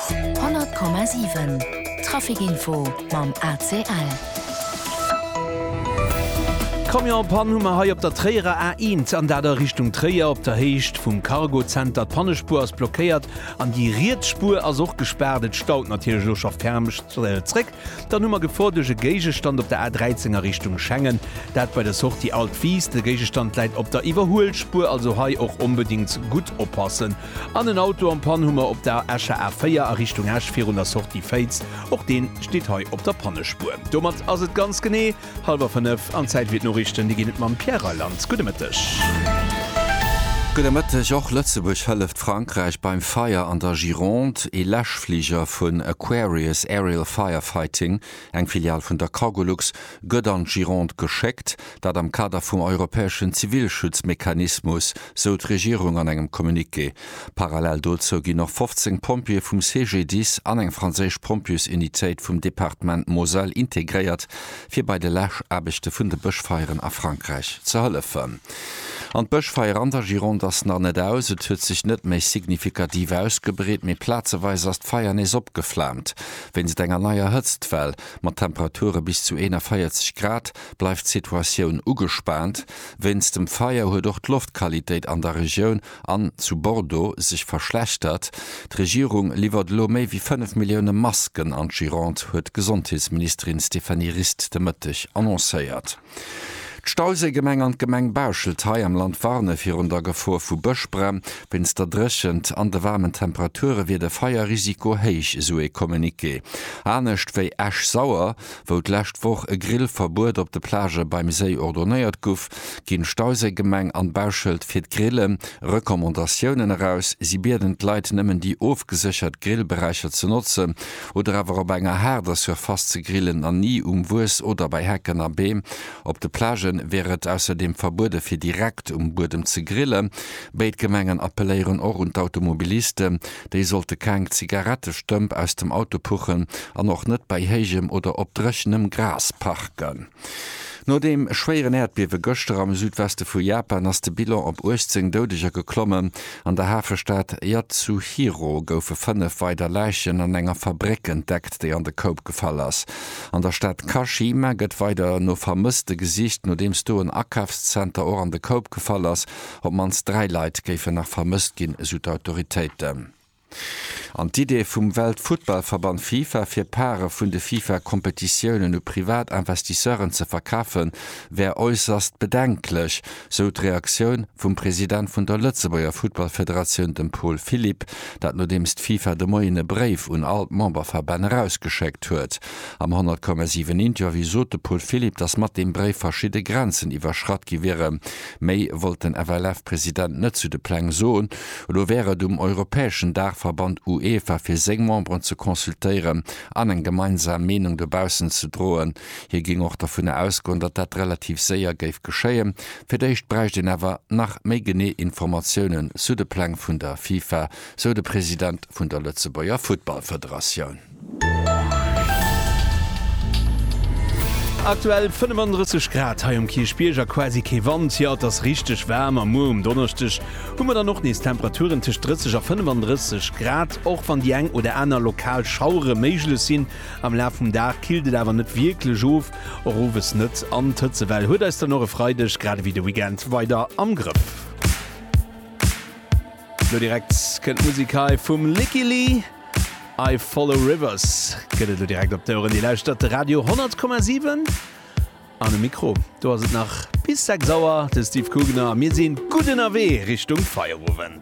100,7 Trafic info mam ACL. Camionspann hu mer hei op der Tréierer A1 an dat a Richtung Tréier op der Héicht vum Cargozenter. D'Pannespuer ass blockéiert an déi riets Spuer ass och gespaart. Et staut natierlech elo scho ferm zréck Dann hu mer Gefor duerch e Géigestand op der A 13 a Richtung Schengen. Dat bei der Sortie Alt Wiis. De Géigestand läit op der Iwwerhuelspuer, also hei och onbedingt gutt oppassen. An en Auto am Pann hu mer op der Escher A 4 a Richtung Esch virun der Sortie Féiz. Och dee steet hei op der Pannespuer. Domat ass et ganz genee. Hallwer 5 an Zäit fir d'Noriichten. Déi ginn et mam Pierre Reyland. Gudde Mëtteg. Gudde Mëtteg. Och Lëtzebuerg hëlleft Frankräich beim Feier an der Gironde. Ee Läschfliger vun Aquarius Aerial Firefighting, eng Filial vun der Cargolux, gëtt an d'Gironde geschéckt. Dat am Kader vum europäeschen Zivilschutzmechanismus, sou d'Regierung an engem Communiqué. Parallel dozou ginn och 15 Pompjeeë vum CGDIS an eng franséisch Pompjeesunitéit vum Departement Moselle integréiert, fir bei de Läschaarbechte vun de Bëschfeieren a Frankräich ze hëllefen. An d'Bëschfeier an der Gironde ass nach net aus. Et huet sech net méi signifikativ ausgebreet, mee plazeweis ass d'Feier nees opgeflaamt. Wéinst enger neier Hëtztwell mat Temperature bis zu 41 Grad bleift d'Situatioun ugespaant. Wéinst dem Feier huet och d'Loftqualitéit an der Regioun An zu Bordeaux sech verschlechtert. D'Regierung liwwert elo méi wéi 5 Millioune Masken an d'Gironde, huet d'Gesondheetsministerin Stéphanie Rist de Mëtteg annoncéiert. D'Stauséigemeng an d'Gemeng Bauschelt hei am Land warne virun der Gefor vu Bëschbränn. Wéinst der Dréchent an de waarmen Temperature wier de Feierrisiko héich, esou ee Communiqué. Anescht wéi Esch-Sauer, Wou d'lescht Woch e Grillverbuet op de Plagë beim Séi ordonéiert guff, ginn d'Stauséigemeng an d'Bauschëld fir d'Grille Recommandatiounen eraus. Si bieden d'Leit nëmmen déi ofgeséchert Grillberäicher ze notzen oder awer op enger haarder Surface ze grillen an ni um Wues oder bei Hecken a Beem. Op de Plagë wier et ausserdeem verbuede fir direkt um Buedem ze grillen. Béid Gemengen appelléieren och un d'Automobilisten, Déi sollte keng Zigarettestëmp aus dem Auto puchen an och net bei héijem oder op dréchenem Gras parken. No deem schwéieren Äerdbiewe gëschter am Südweste vu Japan ass de Bilan op 18 Doudeger geklommen. An der Hafestad Yatsuhiro goufe fënnef weider Läichen an enger Fabréck entdeckt, déi an de Koup gefall ass. An der Stad Kashima gëtt weider no Vermësste gesicht, nodeems do en Akafszenter och an de Koup gefall ass. Op d'mannst dräi Leit géifen nach vermësst ginn, esou d'Autoritéiten. An d'Idee vum Weltfuttballverband Fifa, fir Parë vun de Fifa-Kompetitiounen u privat Investisseuren ze verkafen, wär äusserst bedenklech, sou d'Reaktioun vum President vun der Lëtzebuerger Futtballfederatioun, dem Paul Philipp. Dat nodeems d'Fifa de Moien e Bréif un all d'Memberverbänn erausgeschéckt huet. Am 100, 7 Interview sot de Paul Philipp, datt mat deem Bréif verschidde Grenzen iwwerschratt gi wieren. Méi wollt den FLF-President net zu de Pläng soen. Elo wär et um europäeschen Daachverband UEFA fir seng Memberen ze consultéieren an eng gemeinsam Meenung dobaussen ze droen. Hie géing och dovunner ausgoen, datt dat relativ séier géif geschéien. Fir d'éischt bräicht een awer nach méi genee Informatiounen zu de Pläng vun der FIFA, sou de President vun der Lëtzebuerger Futtballfederatioun. Aktuell 35 Grad hei um Kierchbierg a quasi kee Wand. Jo, et ass richteg waarm a muer um Donneschdeg hu mer dann och nees Temperaturen tëscht 30 a 35 Grad, och wann déi eng oder aner lokal Schauere méiglech sinn. Am Laf vum Dag killt et awer net wierklech of, och owes net. An d'Hëtzewell huet eis dann och e Freideg, grad ewéi de Weekend, weider am Grëff. Lo direkt kënnt d'Musik hei vum Lykke Li, I Follow Rivers. Gëtt et lo direkt op d'Oueren. Dir lauschtert de Radio 100,7. An um Mikro, do ass et nach bis 6 Auer de Steve Kugner a mir sinn gutt ënnerwee Richtung Feierowend.